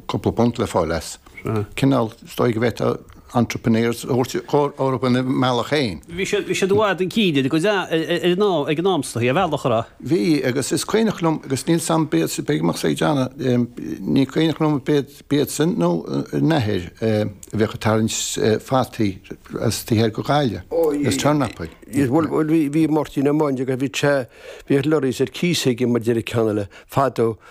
cúpla punt le fáil as. Cineál, is dóigh go bhféadfá entrepreneurs a thabhairt orthu ina mbealach féin. Bhí siad, bhí siad i bhfad chun cinn ar an am, ag an am is dóigh, ar bhealach ar a. Bhí, agus is cuimhneach liom, agus níl a fhios agam ab iadsan, a bhíodh á dhéanamh, ní cuimhneach liom ab iad, ab iadsan nó a n-athair a bheadh ag tarraingt fataí as taobh thiar go Gaillimh, is turnapaí. Is bhuel, bhuel bhí, bhí Máirtín Ó Maindeaga, bhí sé, bhíodh lorries ar cíos aige mar a déarfadh an ceann eile, fadó,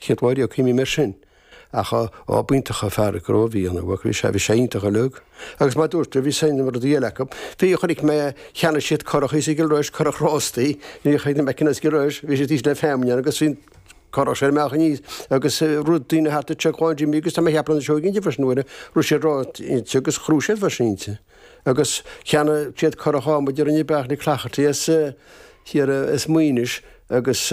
Céad uair a cuimhním air sin. Ach ádh iontach ar Pháraic go raibh, bhí an bhuac leis, sea, bhí sé iontach uilig. Agus mar a dúirt tú, bhí suim i rudaí eile acu. Bhí, chonaic mé cheannaigh siad curach thíos i gCill Rois, curach rástaí, bhí chuid na McKennas i gCill Rois, bhí siad thíos le feamainn ann agus bhí curach sin a mbeadh aníos agus rud, daoine thart ag troid John Jimmy agus tá mé ag ceapadh na Seoighe inti freisin nuair a raibh siad inti agus ghnóthaigh siad freisin inti. Agus cheannaigh siad curach adhmaid a rinne Beairtle Cloherty as thiar as Maínis agus,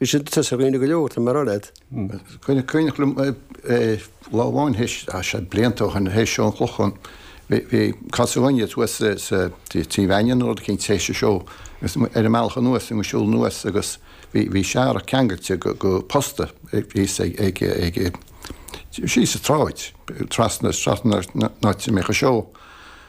Bhí sin te sa dhaoine go leor, tá mé ag rá leat. Cuimhne, cuimhneach liom é lá amháin théis, tá sé blianta ó shin, théis seó an Chlocháin, bhí, bhí casadh againne thuas sa, sa, tí, Tí Mhainnín nó rud eicínt théis an seó agus muid ar an mbealach anuas, bhí muid ag siúl anuas agus bhí, bhí searrach ceangailte go, go posta thíos ag, ag, ag, síos sa tsráid, trasna, trasna ón áit a mbíodh an seó.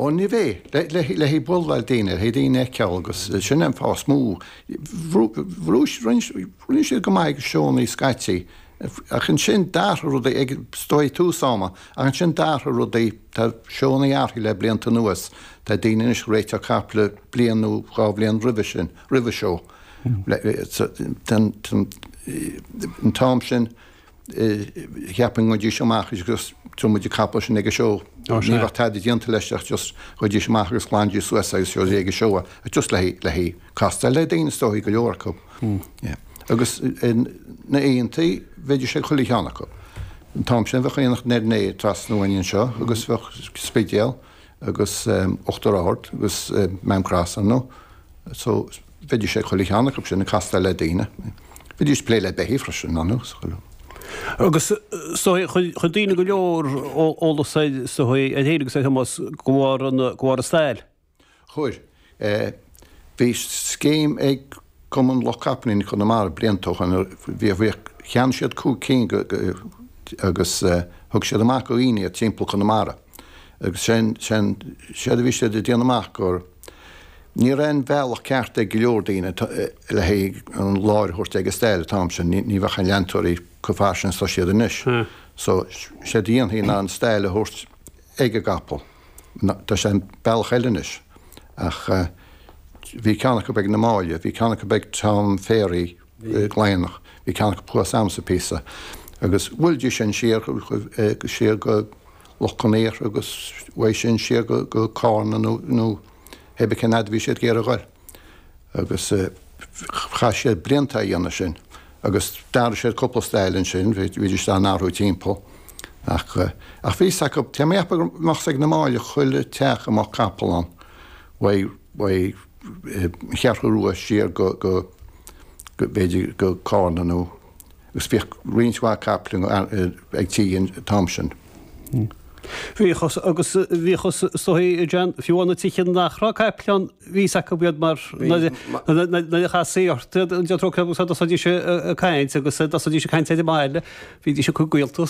Ó ní bheidh, le haghaidh bualadh le daoine, le haghaidh daoine a fheiceáil agus sin an fáth is mó. Rinne siad go maith ag na seónna scaití ach ansin d'athraigh rudaí ag, is dóigh, tús ama ach ansin d'athraigh rudaí, tá seónna athraithe le blianta anuas, tá daoine anois ag réiteach caiple bliain nó dhá bhliain roimhe sin, roimh an seó. An t-am sin, cheapfainn go dtéidís amach agus tabharfaidh muid an capall sin ag an seó. Ní bheadh tada déanta leis ach just go dtéidís amach agus glanaidís suas agus seo í ag an seó ach just le haghaidh le haghaidh castáil le daoine is dóichí go leor acu. Agus na aontaí bheidís ag chuile cheann acu. An t-am sin bheadh Aonach Dhoire Né trasna uainn anseo agus bheadh Spidéal agus Uachtar Ard agus Maam Cross ann nó so bheidís ag chuile cheann acu sin ag castáil le daoine. Bheidís ag plé le beithígh freisin, ar ndóigh, sa chuile. Agus is dóigh, chuir daoine go leor eolas air, is dóigh, air féin agus ar Thomás de bharr an, de bharr an stail. Chuir. Bhí scéim ag Cumann Lucht Capaillíní Chonamara blianta ó shin, bhí, bhí, cheannaigh siad cúig cinn go, agus thug siad amach go dhaoine iad timpeall Chonamara. Agus sé'n, sé'n, séard a bhí siad ag déanamh amach gur, Ní raibh an bealach ceart ag go leor daoine le haghaidh an láir a thabhairt ag an stail an t-am sin, ní bheadh na leantóirí chomh fairsing is atá siad anois. So, séard a dhéanfaí ná an stail a thabhairt ag an gcapall. Tá sé bealach eile anois. Ach bhí ceann acu ag na Máille, bhí ceann acu ag Tom Phéraí, gclaonadh. Bhí ceann acu thuas ansa bpíosa agus bhuailidís sin siar go siar go Loch Con Aortha agus uaidh sin siar go go Cárna nó nó cébí cén fhad a bhí siad ag iarraidh a ghoil. Agus chaith siad blianta á dhéanamh sin agus d'athraigh siad cúpla stail ansin, bhídís dá n-athrú timpeall ach ach bhí fhios acu tá mé ag ceapadh amach ar an mbaile chuile theach a mbíodh capall ann uaidh uaidh Cheathrú Rua siar go, b'fhéidir, go Cárna nó. Agus bhíodh roinnt mhaith capaill ag tithe an t-am sin. Bhíodh agus bhíodh is dóigh, a John, fiú amháin na tithe nach raibh capaill ann, bhí fhios acu iad mar nuair a chastaí ort, déantóir capall, thosaídís ag caint agus thosaídís ag caint ar an mbaile, bhídís ag cur gaolta